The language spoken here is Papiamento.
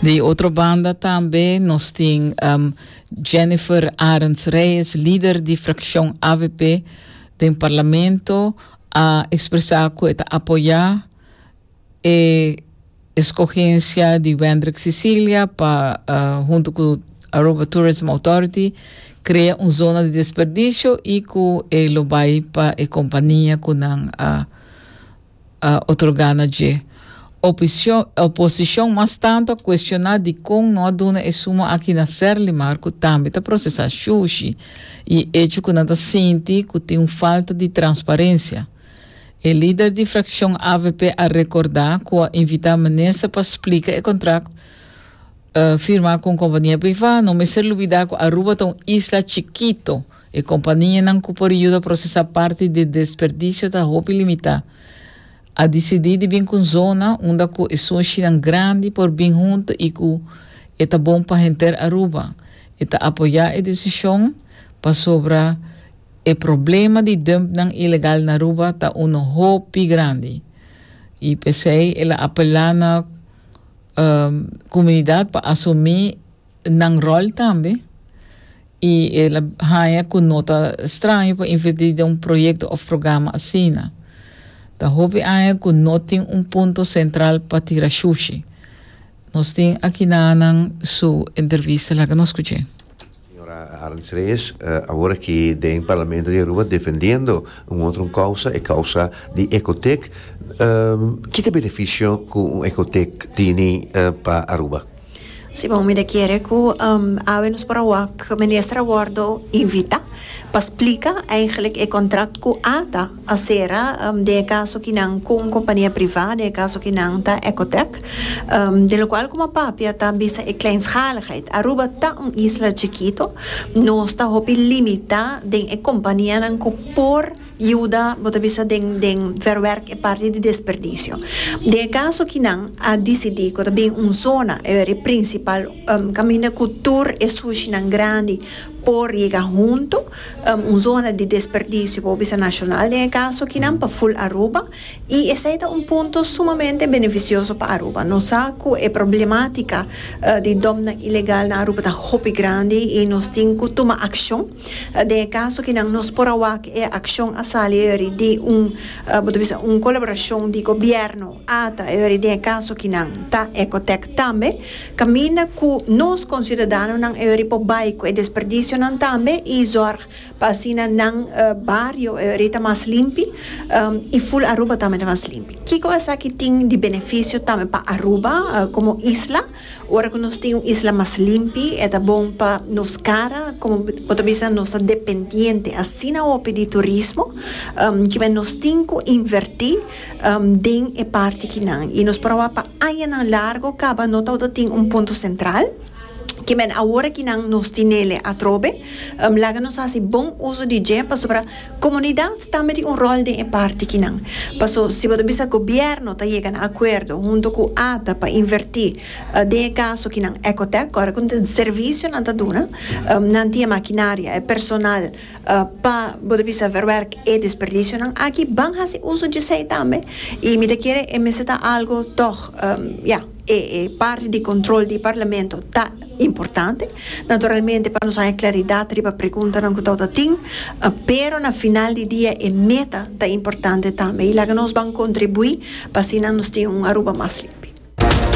Di otro banda tambe nos tin um, Jennifer Arends Reyes, lider di fraccion avp den Parlamento, a expresa cu e ta apoya e escogencia di Wendrick Sicilia pa uh, hunto cu Aruba Tourism Authority crea un zona di desperdicio y cu e lo bay pa e compania cu nan a a otorgá na dje. Opicion, oposicion mas tantu a cuestioná dicon no a duna e suma aki na Serlimar cu tambe ta procesá Shushi y e hecho cu nan ta sinti cu tin un falta di transparencia. E lider di fraccion avp a recordá cu a invitá minister pa splica e contract firmá cu un compania privá. No mester lubidá cu Aruba ta un isla chikito. E kompanianan ku por yuda prosesá parti di desperdisio ta hopi limitá. A disidí di bin ku un zona unda ku e soshinan grandi por bin huntu i ku e ta bon pa henter Aruba. E ta apoyá e desishon pasobra e problema di dumpnan ilegal na Aruba ta unu hopi grandi. I p'esei el a apelá na komunidat pa asumí nan rol tambe y el a haña cu no ta straño pa inverti den un proyecto of programa asina. Ta hopi aña cu no tin un punto central pa tira shushi. Nos tin aki nananan su entrevista. Laga nos scuch'e. Señora Arendse Reyes, awor aki den Parlamento di Aruba defendiendo un otro un causa, e causa di Ecotec. Ki ta beneficio cu un Ecotec tini pa Aruba? Si bon, mi ta kere ku awe nos por a wak minister a wordo invitá pa splika eigentlik e kontrakt ku ata a sera den e kaso ki nan ku un kompania privá, den e kaso ki nan ta Ecotec. Di lokual ku m'a papia ta bisa e kleinschaligheid. Aruba ta un isla chikito, nos ta hopi limitá den e kompanianan ku por. Yuda, bo ta bisa den den verwerk e parti di desperdicio. Den e caso aki nan a dicidi cu ta bin un zona, e weri principal, caminda cu tur e sushinan grandi por yega hunto, un zona di desperdicio bo bisa nacional den e caso aki nan pa full Aruba, y esey ta un punto sumamente beneficioso pa Aruba. Nos sa cu e problematica di dòmnan ilegal na Aruba ta hopi grandi y nos tin cu tuma accion. Den e kaso kinan nos por a wak e akshon a sali eri di un, bo ta bisa, un kolaborashon di gobièrnu, ata eri den e kaso kinan ta Ecotec tambe, kaminda ku nos konsiudadanonan eri por bai ku e desperdisionan tambe i zòrg pa asina nan bario eri ta mas limpi i ful Aruba tambe ta mas limpi. Kiko esaki tin di benefisio tambe pa Aruba komo isla? Ora cu nos tin un isla mas limpi, e ta bon pa nos cara, como bo ta bisa nos ta dependiente asina hopi di turismo, kiba nos tin cu inverti den e parti kinan. Y nos por a wak pa añanan largo caba no tabata tin un punto central, kiba awor aki nan nos tin el'e atrobe, laga nos haci bon uzo di dje pasobra Komunidat tambe tin un ròl den e parti kinan. Paso si bo ta bisa gobièrnu ta yega na akuerdo huntu ku ata pa invertí den e kaso kinan Ecotec ora ku den servisio nan ta duna, nan tin e makinaria, e personal pa bo ta bisa verwerk e desperdisionan aki, ban hasi uso dje esei tambe i mi ta kere e mester ta algu tòg, ya. E parti di control di Parlamento ta importante, naturalmente pa nos haña claridad riba preguntanan cu tawata tin, pero na final di dia e meta ta importante tambe y laga nos ban contribui pa asina nos tin un Aruba mas limpi.